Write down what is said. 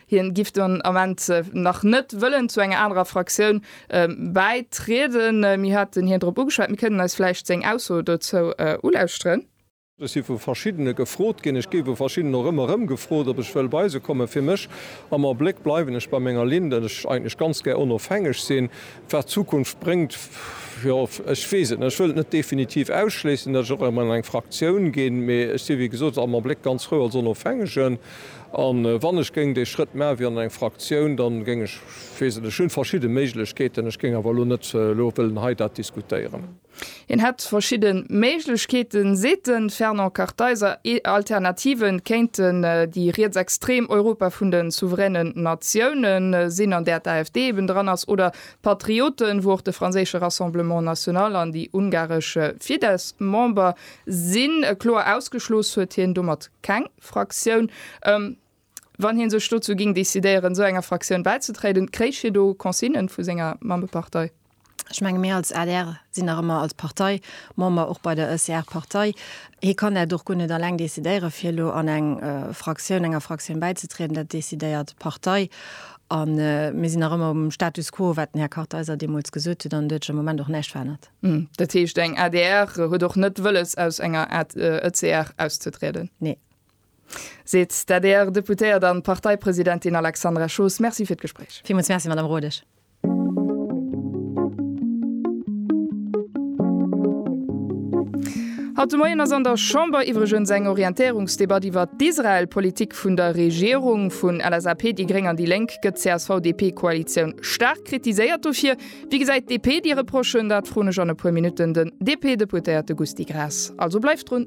Hien giff den Ament nach net wëllen zu enger anerer Fraktioun bäitrieden. Mir haten hien drop ugeschwat. Mir kënnen eis vläicht seng Ausso dozou ulauschteren. Ech si vu verschiddene gefrot ginn. Ech géif u verschiddenen och ëmmer erëm gefrot, ob ech wëll bei se kommen. Fir mech am Abléck bleiwen ech bei menger Linn, datt ech eigentlech ganz gär onofhängeg sinn. Wat d'Zukunft bréngt, jo, ech weess et net. Ech wëll et net definitiv ausschléissen, datt ech och erëm an eng Fraktioun ginn. Mee ech si wéi gesot am Abléck ganz frou als Onofhängegen. A wann ech géing dee Schrëtt ma wéi an eng Fraktioun, dann géing ech, ech weess et, ech hunn verschidde Méiglechkeeten, ech géing awer elo net elo wëllen hei dat diskutéieren. Hien hätt verschidde Méiglechkeeten, seet de Fernand Kartheiser. Alternative kéinten déi rietsextrem Europa vun de souveränen Natioune sinn, an där d'AfD eben dran ass, oder d'Patrioten, wou och de franséische Rassemblement National an déi ungaresch Fidesz Member sinn. Kloer ausgeschloss huet hien domat keng. Fraktioun, ëm, wann hie sech dozou géing decidéieren, esou enger Fraktioun bäizetréiden. Kréich hie do Consignen vu senger Mammepartei? Ech menge mir als adr sinn nach ëmmer als Partei Member och bei der Ëceart-Partei. Hie kann dat och guer net eleng decidéiere fir elo an eng Fraktioun, enger Fraktioun bäizetrieden. Dat decidéiert d'Partei. A mir sinn nach ëmmer um Status quo, wat den Här Kartheiser deemools gesot huet, an et huet sech am Moment och näischt verännert. Hm, dat heescht eng adr huet och net wëlles aus enger ECR auszetrieden? Nee. Seet d'ADR-Deputéiert an Parteipresidentin Alexandra Schoos. Merci fir d'Gespréich. Villmools Merci, Madame Rodesch. Haut de Moien ass an der Chamber iwwregens eng Orientéierungsdebatt iwwert d'Israel-Politik vun der Regierung. Vun LSAP, déi Gréng an déi Lénk gëtt d'CSV-DP-Koalitioun staark kritiséiert dofir. Wéi gesäit d'DP déi Reprochen? Dat froen ech an e puer Minutten den DP-Deputéierte Gusty Graas. Also bleift drun!